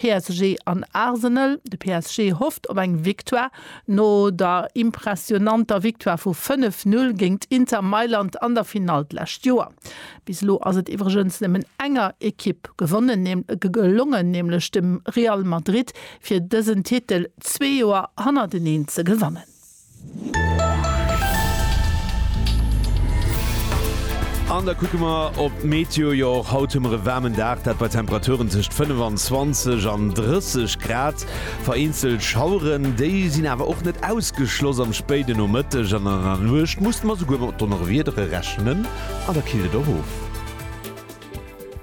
PSG an Arsenal, de PSG hofft op eng Victoire no der impressionanter Victoire vu 5, 0 géingt Inter Mailand an der Finall d'lescht Joer. Bis elo ass et iwwregens nëmmen enger Ekipp gewonnen gelongen, nämlech dem Real Madrid, fir dësen Titel zwee Joer hannerteneen ze gewannen. An da kucke mer op d'Meteo. Jo, och haut hu mer e waarmen Dag, dat bei Temperaturen tëscht 25 an 30 Grad. Vereenzelt Schaueren, déi sinn awer och net ausgeschloss. Am spéiden Nomëtteg an an der Nuecht musse mer souguer mat Donnerwiedere rechnen an da killt et och of.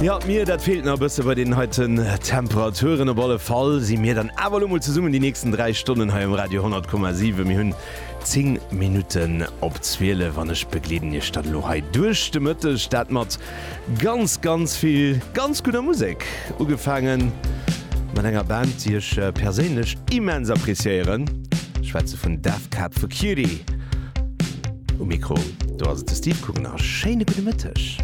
Ja, d'Mier, dat feelt nach e bësse bei deenen heiten Temperaturen. Op alle Fall si mir dann awer elo mol zesummen déi nächsten dräi Stonnen hei um Radio 100,7. Mir hunn 10 Minutten op 12 an ech begleeden Iech dann elo hei duerch de Mëtteg, dat mat ganz, ganz vill ganz gudder Musek. Ugefaange mat enger Band, déi ech perséinlech immens appreciéieren. Ech schwätze vun Death Cab for Cutie. Um Mikro do ass et de Steve Guggeners. Schéine gudde Mëtteg.